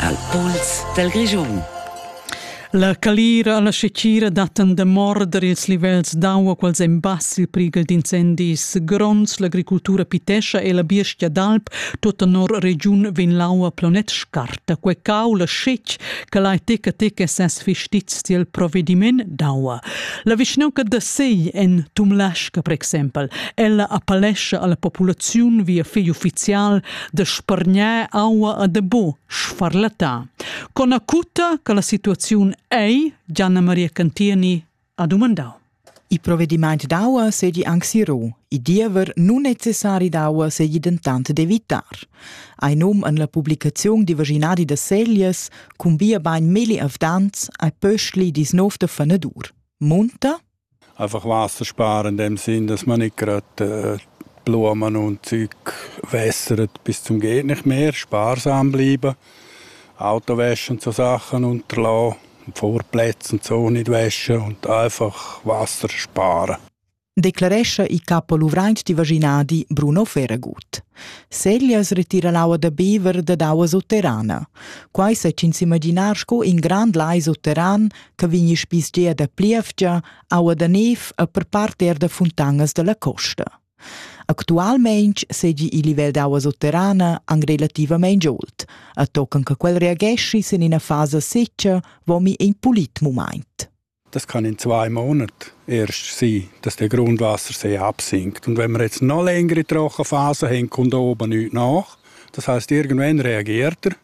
al pols dal Grischun. La calira alla secira dattan da morder ils livels d'aua quals en bass il prighel d'incendis gronds. L'agricultura pitescha e la biestia d'alp tota nor regiun vegn l'aua planet scarta. Quei cau la scec che lai teca teca ses fistizs tiel provvediment d'aua. La vischnanca da Sei en Tumlasca, per exempel, ella appellescia alla populaziun via fegl ufficial de spargnar aua a de bo sfarlatà. Con acuta che la situaziun ei, Gianna Maria Cantieni ha domandau. I provvedimento d'aua segli anche sirò, i diever non necessari d'aua segli dentant d'evitar. Ein num an la publicazione di vaginadi da seglias cun via bain milli avdants ai pöschli dis nov de fanadur. Munta? Einfach Wasser sparen in dem Sinn, dass man nicht gerade Blumen und Zeug wässert bis zum geht nicht mehr, sparsam bleiben. Autowäsche und so Sachen unterlassen, Vorplätze und so nicht waschen und einfach Wasser sparen. Declarescha il capo luvrant di vaginadi Bruno Ferragut. Seglias retiran aua da bever dad aua sutterrana. Quai sa ins imaginar sco in grand lai sutterran che vegni spisgia da plievgia, aua da nev e per part er da funtangas dalla costa. Actualmein segi il livel d'aua sotterrana an relativamein old, a tocan che quel reagesci sin ina fasa seccia vomi in pulit moment. Das kann in zwei Monaten erst sein, dass der Grundwassersee absinkt. Und wenn wir jetzt noch längere Trochenphasen haben, kommt oben nichts nach. Das heißt, irgendwann reagiert er.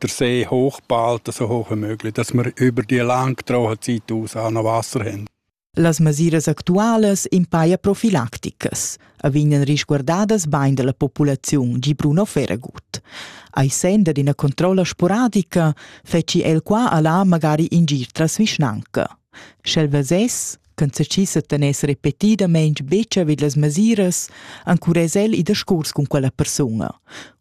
der See hochbehalten, so hoch wie möglich, dass wir über die langtrauen Zeit aus auch noch Wasser haben. Las mesiras actualas impaia profilacticas a vegnan risguardadas bain dalla populaziun, gi Bruno Ferragut. Ai senda d'ina controlla sporadica feci el qua alla magari ingir tras vischnanca. Sch'el vesess, ch'en seschissen tener repetidamein betg vid las mesiras, encurez el i da scurs cun quella persuna.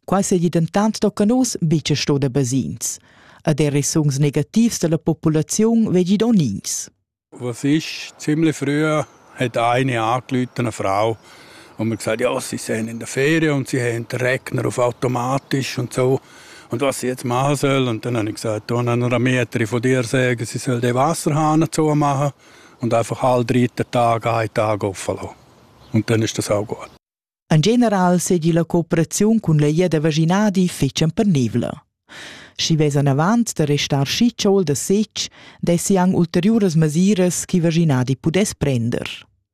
Quai seigi dentant tocca nus betg sto da basins. Ad er resungs negativs della populaziun vegi don ins. Was ist, ziemlich früh hat eine angerufen, eine Frau, und mir gesagt, ja, sie sind in der Ferien und sie haben den Rechner auf automatisch und so. Und was jetzt machen soll. Und dann habe ich gesagt, oh, dann Metri von dir sagen, sie soll den Wasserhahn zu machen und einfach alle drei Tage einen Tag auflassen. Und dann ist das auch gut. En general segi la cooperaziun cun la lia da vaginadi fetschan pernivla. Schi vesan avant da restar schi tschol da setg, dessi ang ulteriuras masiras che vaginadi pudess prender.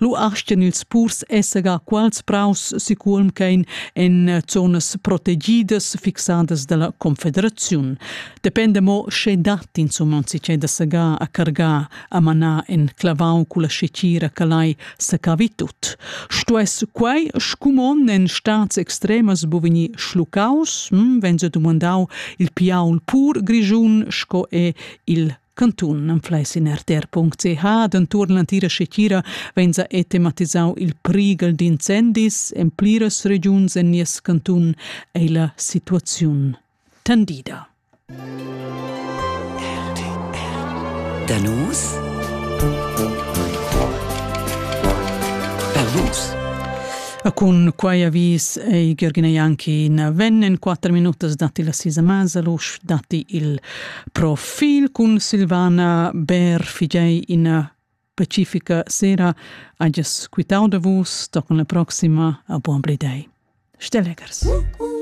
Lu astgan ils purs esser quals praus sicurm ch'ein en zonas protegidas fixadas dalla confederaziun. Depende mo sche dat insumma si da segar a cargar a manar en clavau culla scecira che lai secavi tut. Stuess quei scumon en stads extremas bu vegnir schlucaus, hm, wenn se dumandau il piaul pur grischun sco è il Cantun anfleis in rtr.ch denton l'entira schitgira vegns a ethematisau il prighel d'incendis en pliras regiuns en nies cantun ei la situaziun tendida. Danus Danus A cun quai avis ei Ghergina Jankin vennen 4 minutas datti la sisa Masalusch datti il Profil cun Silvana Bär figei ina pacifica sera hagias quitau da vus tocan la proxima a buon blidei. Stelegers. Uh, uh.